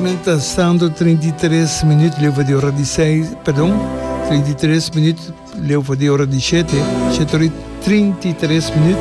Men ta stando treinta i tres minüt leu for di ora di seis, perdon, treinta i tres minüt leu for di ora di shete, shete ora i treinta i tres minüt.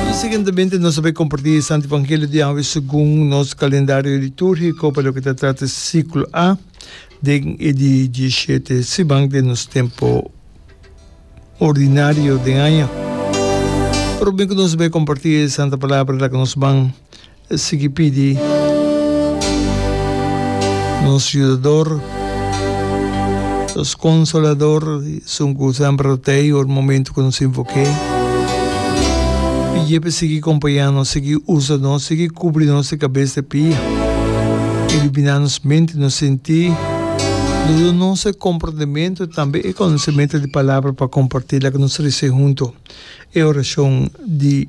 I siguientemente nos ta bay comparti e Santo Evangelio di awe segun nos calendario litúrgico pa loke ta trata siclo A den e di dieshete siman den nos tempo ordinario den aña. Prome cu nos ta bay comparti e Santa Palabra laga nos ban. E sigui pidi nos Yudador, nos Konsolador, esun ku semper lo ta ei ora momentu ku nos invok'E. Pidi'E pa E sigui kompañá nos, sigui usa nos, sigui kubri nos di kabes te pi, iluminá nos mente, nos sentí, duna nos e komprendementu, tambe e konosementu di palabra pa kompartí loke nos risibí huntu. E orashon di.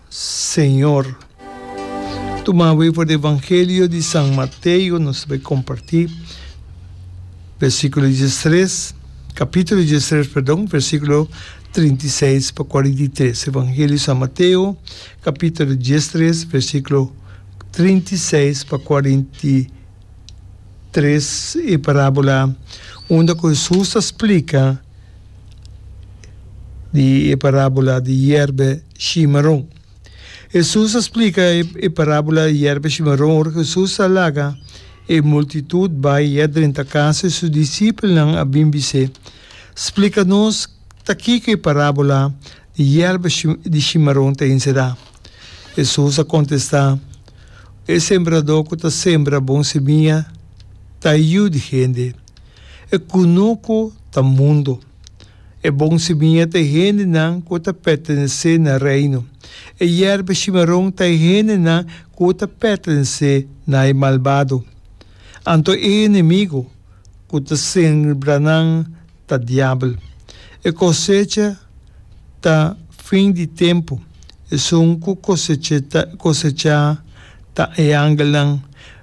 Señor. Tumawe for di Evangelio di San Mateo, nos bai comparti versiculo diestres, capitulo diestres, perdon, versiculo trinta i seis pa cuarenta i tres. Evangelio di San Mateo, capitulo diestres, versiculo trinta i seis pa cuarenta i tres, e parabola unda cu Jesus ta splica di e parabola di yerbe, shimaron. Hesus a splika e parábola di yerba shimaron ora ku Hesus a laga e multitut bai e a drenta kas i su disipelnan a bin bis'é, Splika nos ta kiko e parábola di yerba di shimaron ta inserá. Hesus a kontestá, E sembradó ku ta sembra bon simia ta e yu di hende. E kunuku ta mundu. E bon simiña ta e hendenan ku ta pertenesé na Reino. E yerba shimaron ta e hendenan ku ta pertenesé na e malbado. Anto e enemigu ku ta sembra nan ta Diabel. E kosecha ta fin di tempu, esun ku kosechá ta e angelnan.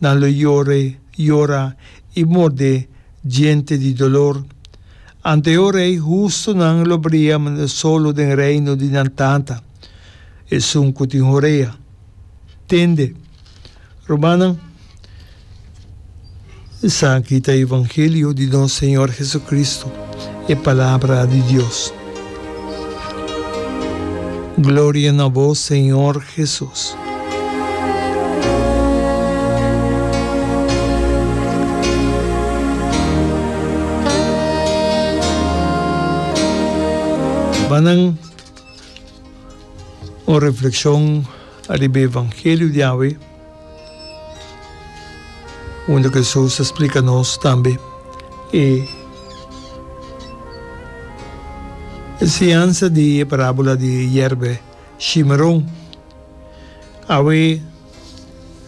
nan lo yore, yora i mordé djente di dolor. Ante e rei hustunan lo bria manera solo den reino di nan tata, esun ku tin horea, tende. Rumannan, esaki ta e evangelio di nos Señor Jesucristo, e Palabra di Dios. Gloria na bo Señor Jesus. Banan un refleccion ariba evangelio di awe. Unda Jesús ta splika nos tambe e enseñansa di e parábola di e yerbe shimeron. Awe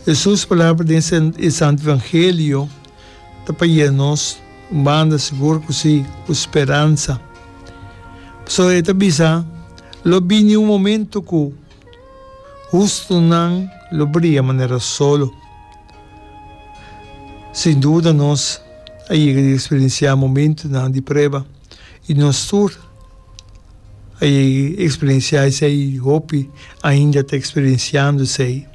Jesús palabra den e Santu Evangelio ta pai'é nos un banda, sigur ku sí, ku speransa. Pasobra e ta bisa, Lo bini un momentu ku. Hustunan lo bria manera solo. Sin duda nos a yega di eksperensiá momentunan di prueba, i nos tur a yega di eksperensiá esei, hopi ainda ta eksperensiando esei.